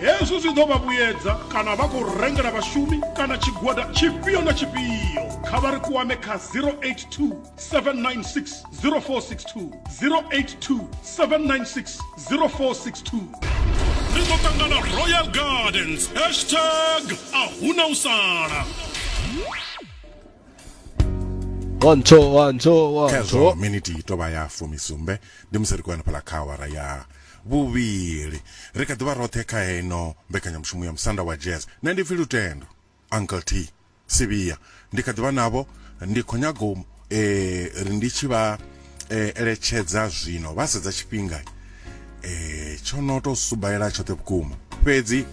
Hezwi zwi ḓo vha vhuyedza kana vha khou rengela vhashumi kana tshigwada tshifhio na tshifhio, kha vha ri kwame kha 082 796 0462, 082 796 0462. Ri ḓo ṱangana Royal Gardens, hashtag a hu na u sala. One, two, one, two, one, two. khezwo miniti i tovha ya fumisumbe ndi musi ri khou henefhala kha awara ya Vhuvhili. Ri kha ḓi vha roṱhe kha heino mbekanyamushumo ya Musanda wa Jazz. Nṋe ndi pfi Lutendo, Uncle T. Sivhiya. Ndi kha ḓi vha navho, ndi khou nyaga u ri ndi tshi vha eletshedza zwino vha sedza tshifhinga tsho no tou subaela tshoṱhe vhukuma. Fhedzi.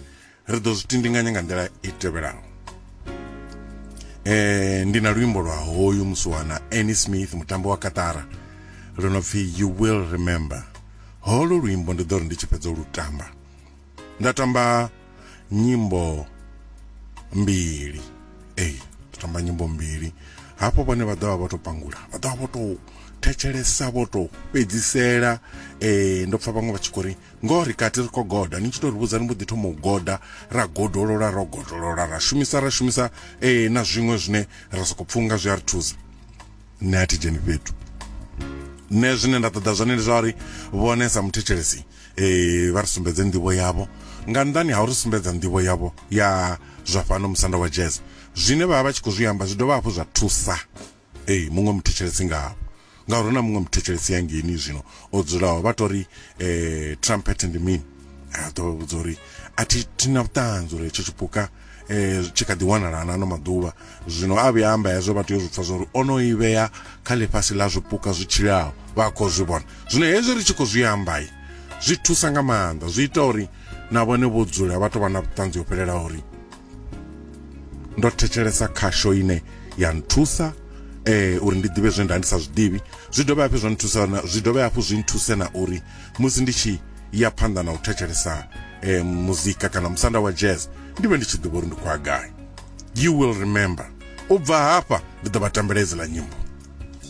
ri ḓo zwi tindinganya nga nḓila i tevhelaho eh ndi na luimbo lwa hoyu musiwana Annie Smith mutambo wa Katara lwo no pfi you will remember holo luimbo ndi ḓo ri ndi tshi fhedza lu tamba nda tamba nyimbo mbili ey nda tamba nyimbo mbili hafho vhone vha ḓovha vho to pangula vha ḓovha vho to thetshelesa vho to fhedzisela eh ndo pfa vhaṅwe vha tshi khou ri Ngoho ri kati ri khou goda, ni tshi tou ri vhudza ni mbo ḓi thoma u goda, ra godolola, ro godolola, ra shumisa, ra shumisa, ee na zwiṅwe zwine ra sokou pfunga zwi a ri thusa. Nṋe a thi dzheni fhethu. Nṋe zwine nda ṱoḓa zwone ndi zwa uri vhone sa muthetshelesi eh vha ri sumbedze nḓivho yavho nga nnḓani ha uri sumbedza nḓivho yavho ya zwa fhano musanda wa jazz zwine vha vha vha tshi khou zwi amba zwi dovha hafhu zwa thusa Ee, muṅwe muthetshelesi nga havho. Ngauri hu na muṅwe muthetshelesi ya ngeni zwino o dzulaho vha tou ri eh, trumpet ndi mini? A ḓo vha vhudza uri a thi thi na vhuṱanzi uri hetsho tshipuka eh, tshi kha ḓi wanala na ano maḓuvha. Zwino a vhuya amba hezwo vha tea u zwi pfa zwa uri o no i vhea kha ḽifhasi ḽa zwipuka zwi tshilaho vha khou zwi vhona. Zwino hezwi ri tshi khou zwi amba zwi thusa nga maanḓa zwi ita uri na vhone vho dzula vha tou vha na vhuṱanzi ho fhelelaho uri ndo thetshelesa khasho ine ya nthusa eh uri ndi ḓivhe zwe nda ndi sa zwiḓivhi zwi dovha hafhu zwa nthusa na zwi dovha hafhu zwi nthuse na uri musi ndi tshi ya phanḓa na u thetshelesa eh muzika kana musanda wa jazz ndi vhe ndi tshi ḓivha uri ndi khwa gai you will remember u bva hafha ndi ḓo vha tambela idziḽa nyimbo